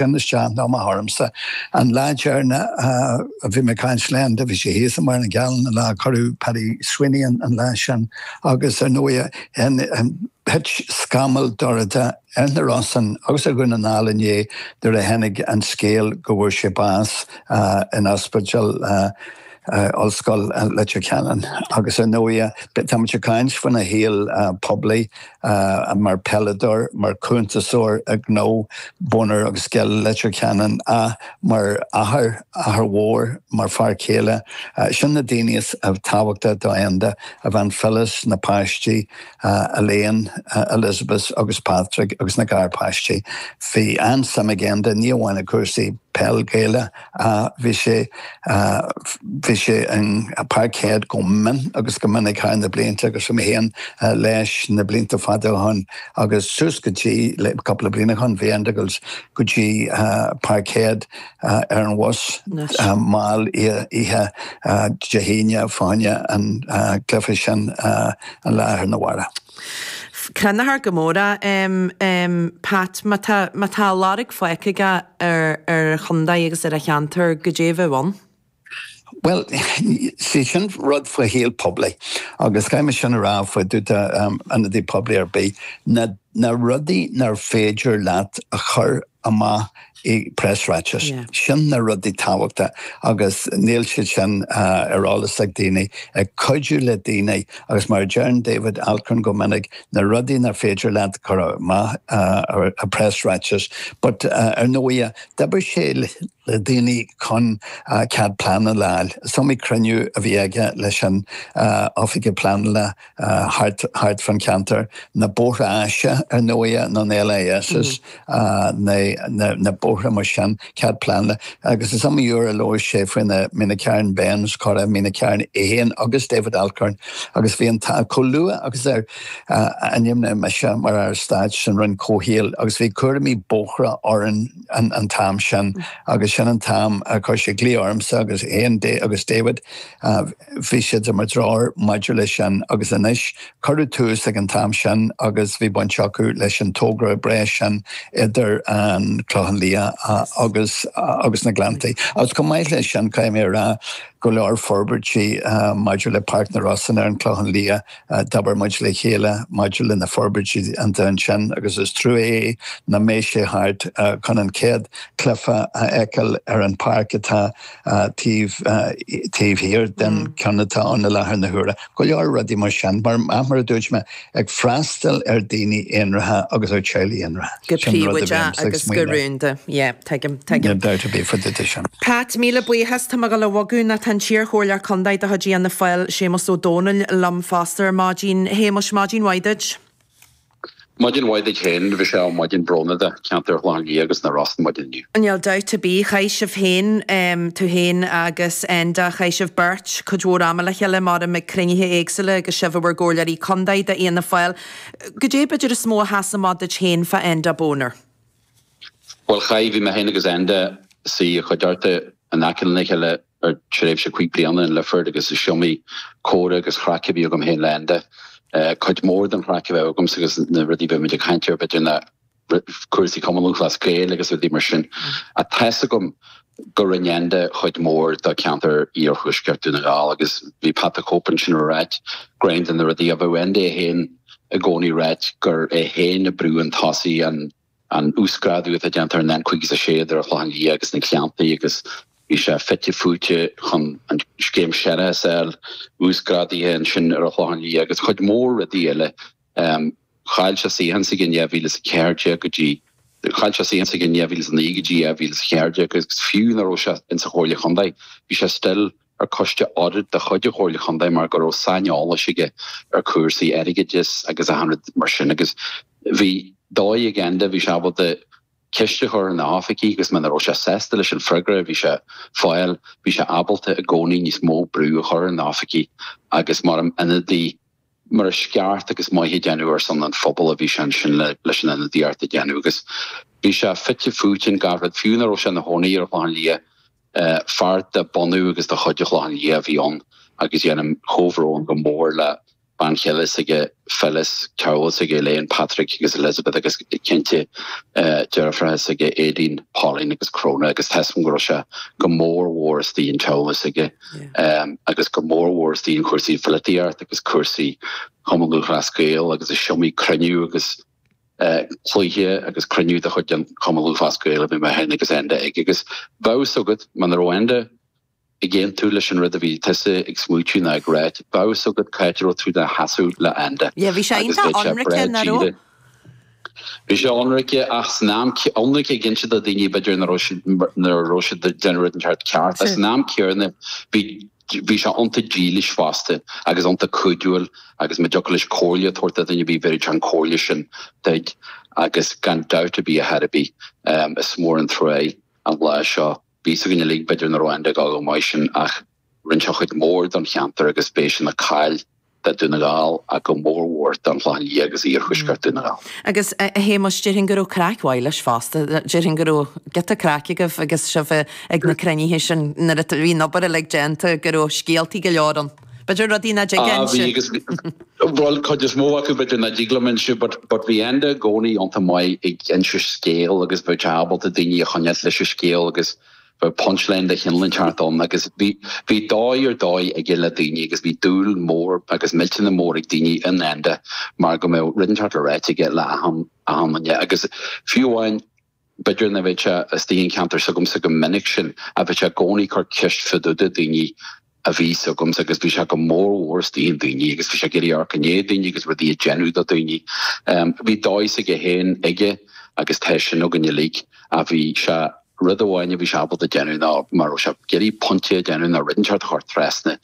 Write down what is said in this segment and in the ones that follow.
Téann isteach nó amach tharamsa. An lá deireanach a bhí mé ag caint le Enda, bhí sé thíos i Machaire Gathlán an lá a cuireadh Paddy Sweeney ann an lá sin agus ar ndóigh thit scamall dorcha ar na Rosann agus ar Dhún na nGall inné nuair a tháinig an scéal go bhfuair sé bás in ospidéal. Ollscoil Leitir Ceanainn agus ar ndóigh tá muid ag caint faoina shaol poiblí mar pheileadóir, mar chuntasóir gnó, Bonner agus Gill Leitir Ceanainn, mar athair, athair mhór, mar fear céile. Sin na daoine is tábhachtacha do Enda, a bhean Phyllis, na páistí, a Elaine, a Elizabeth agus Patrick agus na garpháistí. Bhí an-suim ag Enda ní amháin i gcúrsaí peil Gaelach ach bhí sé bhí sé in Parkhead go mion agus go minic thar na blianta agus bhí mé féin leis na blianta fada ó shoin agus suas go dtí le cúpla bliain ó shoin bhí Enda ag gabháil go dtí Parkhead ar an bhus mall oíche Dé hAoine, fá choinne an chluife sin an lá arna mháireach. Cronófar go mór é a Pat má tá a lorg fágtha aige ar a chontae agus ar a cheantar goidé a bheadh ann? Bhuel, sea, sin rud faoi shaol poiblí agus caithfidh mé sin a rá fá dtaobh de ionadaí poiblí ar bith, na rudaí nár féidir leat a chur amach i bpreasráiteas, sin na rudaí tábhachtacha agus níl siad sin ar eolas ag daoine. Ag cuidiú le daoine agus mar a deireann David Alcorn go minic, na rudaí nár féidir leat a chur amach i bpreasráiteas but ar ndóighe, d'oibrigh sé le. le daoine chun cead pleanála a fháil. Is iomaí cruinniú a bhí aige leis an oifigeach pleanála thart fán cheantar na Bóithre Áise ar ndóighe, nó na LISs, na bóithre mar sin, cead pleanála. Agus is iomaí uair a labhair sé faoi na Meenacarn bends, coradh Mhín an Chairn é féin agus David Alcorn, agus bhí an t-ádh chomh luath agus ar ainmníodh mise mar Aire Stáit san Roinn Comhshaoil agus bhí cúraimí bóithre orainn, an t-am sin agus sin an t-am a chuir sé glao ormsa agus Enda agus David, bhí siad do mo threoir maidir leis sin agus anois cuireadh tús ag an t-am sin agus bhí baint acu leis an togra breá sin idir an Clochán Liath agus na Gleanntaí. Agus chomh maith leis sin, caithfidh mé a rá go leor forbairtí maidir le Páirc na Rosann ar an Clochán Liath, D'obair muid le chéile maidir le na forbairtí iontu ansin agus is trua é nach mbeidh sé thart chun an chéad chluiche a fheiceáil ar an pháirc atá taobh taobh thiar den cheann atá ann i láthair na huaire. Go leor rudaí mar sin, mar a dúirt mé, ag freastal ar dhaoine aonraithe agus ar theaghlaigh aonraithe. Go príobháideach agus go rúnda. Tuigim, tuigim. Níl dabht ar bith fá dtaobh de sin. Pat, Míle buíochas. Tá mé ag dul a bhogadh nó tá an t-iar chomhairleoir contae de chuid Fhianna Fáil, Séamus Ó Domhnaill, liom fosta ar maidin. Shéamuis, maidin mhaith duit. Maidin mhaith duit féin. Bhuel is maidin brónach do ceantar Chlochán Liath agus na Rosa maidin inniu. Níl dabht ar bith. Chaith sibh féin, tú féin agus Enda, chaith sibh beirt cuid mhór ama le chéile, maram, ag cruinnithe éagsúla agus sibh i bhur gcomhairleoirí contae do Fhianna Fáil. Goidé b'fhéidir is mó a sheas amach duit féin fá Enda Bonner? Bhuel, chaith, bhí mé féin agus Enda ag suí i gcuideachta, in aice lena chéile ar feadh tréimhse cúig bliana in Lifford agus is iomaí comhrá agus craic a bhí agam féin le Enda. Cuid mór den chraic a bheadh agamsa agus na rudaí a bheadh muid ag caint air b'fhéidir ná cúrsaí Cumann Lúthchleas Gael agus rudaí mar sin. Ach tá's agam go rinn Enda cuid mhór do cheantar Iarthuaisceart Dún na nGall agus bhí Pat the Cope ansin ag ráit gur ceann de na rudaí a bheadh Enda é féin i gcónaí ag ráit gur é féin a bhrúigh chun tosaigh an uasghrádú atá déanta ar an N56 idir An Clochán Liath agus na Gleanntaí agus bhí sé fite fuaite chun an scéim séarachais a fháil uasghrádaithe ansin ar An Clochán Liath agus cuid mhór rudaí eile. Chaill sé suíochán s'aige in 2014 go dtí, chaill sé suíochán s'aige in 2009 go dtí 2014 agus fiú ná raibh sé insa Chomhairle Chontae, bhí sé still ar coiste audit de chuid an Chomhairle Chontae mar go raibh saineolas aige ar cúrsaí airgeadais agus achan rud mar sin agus bhí dóigh ag Enda bhí sé ábalta ceist a chur ar na hoifigigh agus muna raibh sé sásta leis an freagra a bhí sé ag fáil, bhí sé ábalta i gcónaí níos mó brú a chur ar na hoifigigh agus mar ionadaí. mar is ceart agus maith a déanamh ar son an phobail a bhí sé ansin leis an ionadaíocht a déanamh agus bhí sé fite fuaite in gach rud fiú ná raibh sé ina chónaí ar an Chlochán Liath fear de bhunadh agus de chuid an Chlochán Liath a bhí ann agus déanaim comhbhrón go mór le bean chéile s'aige Phyllis teaghlach s'aige Elaine Patrick agus Elizabeth agus cinnte deirfiúracha s'aige Aideen Pauline agus Cróna agus tá's agam go raibh sé go mór mhór istigh in teaghlach s'aige agus go mórmhór istigh in cúrsaí polaitíocht agus cúrsaí Chumann Lúthchleas Gael agus is iomaí cruinniú agus cluiche agus cruinniú de chuid an Chumann Lúthchleas Gael a bhí mé féin agus Enda ag agus bheadh a fhios agat muna raibh Enda ag aontú leis an rud a bhí tusa ag smaoitiú nó ag ráit bheadh a fhios agat cá háit a raibh tú i do sheasamh le Enda agus bheadh sé breá díreach. Bhí sé ionraic ach san am ionraic ag inse do dhaoine b'fhéidir ná raibh siad ná raibh siad déanamh rud inteacht ceart ach san am céanna bhí bhí sé iontach dílis fosta agus iontach cuidiúil agus má dtiocfadh leis comhairle a tabhairt do dhaoine bhí bheireadh sé an comhairle sin dúinn agus gan dabht ar bith ar chor ar bith is mór an trua é an lá seo bhí fhios againn uilig b'fhéidir ná raibh Enda ag gabháil go maith sin ach Rinne sé cuid mhór don cheantar agus beidh sé ina chaill do Dún na nGall ach go mór mhór don Chlochán Liath agus Iarthuaisceart Dún na nGall. Agus a Shéamais, déarfainn go raibh craic mhaith leis fosta. Déarfainn go raibh giota craic agaibh agus sibh ag na cruinnithe sin nuair a bhí an obair uilig déanta, go raibh scéaltaí go leor ann. B'fhéidir rudaí ná dtig Ah, bhí agus, bhuel, cuid is mó acu b'fhéidir ná dtig liom inse but, but bhí Enda i gcónaí iontach maith ag inse scéal agus bheith ábalta daoine a choinneáilt leis an scéal agus Bhí punch line de chineál inteacht ann agus bhí dóigh ar dóigh aige le daoine agus bhí dúil mhór agus millteanach mór ag daoine in Enda mar go mbeadh rud inteacht le ráite aige le achan duine agus fiú amháin b'fhéidir ná mbeadh sé istigh sa cheantar s'agamsa go minic sin ach bheadh sé i gcónaí cur ceist fadúda daoine a bhí s'agamsa agus bhí sé go mór mhór isteach i ndaoine agus bhí sé ag iarraidh amharc i ndiaidh daoine agus rudaí a déanamh do daoine. Bhí dóigh s'aige féin aige agus tá sin againn uilig ach bhí sé rud amháin a bhí sé ábalta déanamh ná má raibh sé ag iarraidh pointe a déanamh nó rud inteacht a chur trasna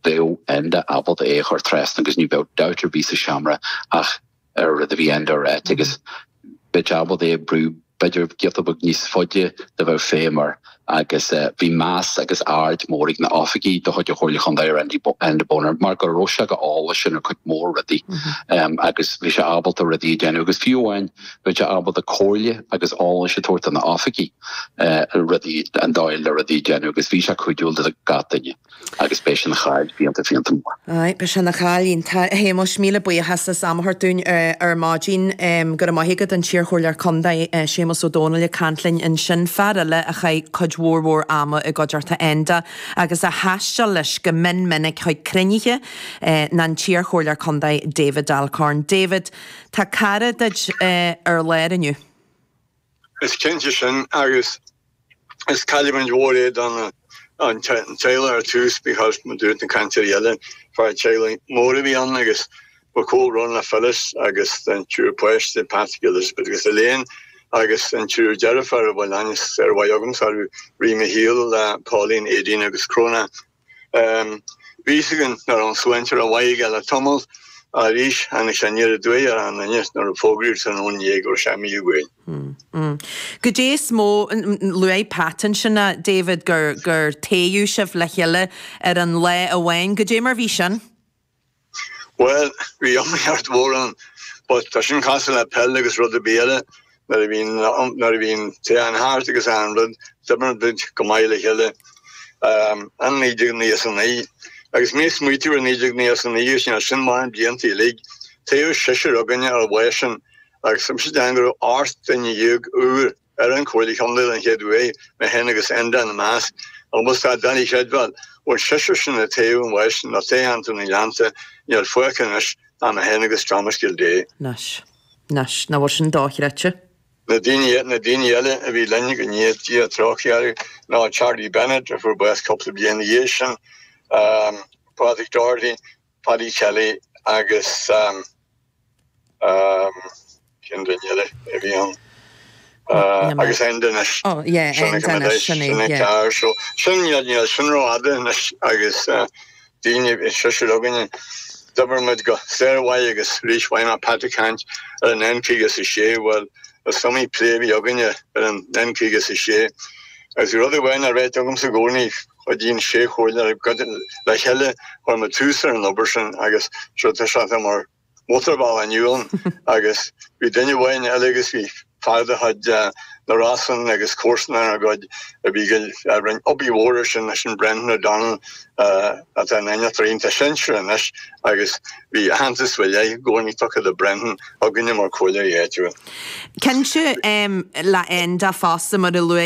bheadh Enda ábalta é a chur trasna agus ní bheadh dabht ar bith sa seomra ach an rud a bhí Enda a ráit agus bheith ábalta é a brú b'fhéidir giota beag níos faide dá mbeadh feidhm air agus bhí meas agus aird mór ag na oifigigh de chuid an Chomhairle Chontae ar Enda Bonner mar go raibh sé go heolasach ar cuid mór rudaí agus bhí sé ábalta rudaí a déanamh agus fiú amháin bhí sé ábalta comhairle agus eolais a tabhairt do na oifigigh rudaí an dóigh le rudaí a déanamh agus bhí sé cuidiúil do gach duine. agus beidh sé ina chaill fiánta fiánta mór. Aye, beidh sé ina chaill fhiánta. A Shéamais, míle buíochas as am a thabhairt dúinn ar maidin. Go raibh maith agat, an t-iarchomhairleoir contae, Séamas Ó Domhnaill ag caint linn ansin, fear eile a chaith cuid mhór mhór ama i gcuideachta Enda agus a thaistil leis go min minic chuig cruinnithe ná an t-iarchomhairleoir contae David Alcorn. David, tá cara duit ar lár inniu. Is cinnte sin agus is cailliúint mhór é don teaghlach ar tús because mar dúirt na cainteoirí eile fear teaghlaigh mór a bhí ann agus mo chomhbhrón le Phyllis agus an triúr páistí, Patrick, Elizabeth agus Elaine agus an triúr deirfiúr a bhfuil aithne shármhaith agamsa orthu, Ree Micheal, Pauline, Aideen agus Cróna. Bhí a fhios againn ná raibh an tsláinte go maith aige le tamall arís anois an deireadh doigh ar an Aoine nuair a fógraíodh san Fhóin Dhéag go raibh sé imithe uainn. Goidé is mó, luaigh Pat ansin, David, gur toghadh sibh le chéile ar an lá amháin. Goidé mar bhí sin? Bhuel, bhí iomaíocht mhór ann, but tá sin cosúil le peil agus rud ar bith eile, nuair a bhíonn, nuair a bhíonn toghchán thart agus achan rud, d'oibrigh muid go maith le chéile. An naoi déag nócha is a naoi, agus mé ag smaoitiú ar naoi déag nócha is a naoi is ea, sin mar na blianta uilig, toghadh seisear againne ar an lá sin, agus tá mise ag déanamh go raibh ocht nduine dhéag úr. Ar an Chomhairle Contae an chéad uair mé féin agus Enda ina measc, agus tá sé doiligh a chreidbheáil, an seisear sin a toghadh ann as nó toghcheantar na nGleannta, níl fágtha anois ach mé féin agus Thomas Gildea. Nós. Nós. Nach bhfuil sin dochreidte? Na daoine na daoine eile a bhí linn, go ndéana Dia trócaire orthu, ná Charlie Bennett a fuair bás cúpla bliain ina dhiaidh sin, Pádraig Doherty, Paddy Kelly agus cén duine eile a bhí ann? Agus Enda anois. Ó ie Enda anois sin é. Sin é ceart so sin níl sin ró fhada anois agus den seisear againne. D'oibir muid go sármhaith agus arís mhaith mar Pat ag caint ar an N caoga is a sé bhuel is iomaí plé a bhí againne ar an N caoga is a sé agus bhí rud amháin á réiteach agamsa i gcónaí Cuidíonn sé chugainn ar le chéile chuir muid tús ar an obair sin agus so tá sé atá mar mótarbhealach inniu ann agus bhí duine amháin eile agus bhí fear de chuid na Rosann agus comharsanach dár gcuid a bhí a rinn obair mhór ar sin is é sin Brendan O'Donnell atá ina innealtóir sinsearach anois agus bhí aitheantas faoi leith i gcónaí tugtha do Brendan againne mar comhairleoirí áitiúla. Cinnte, le Enda fosta mar a luaigh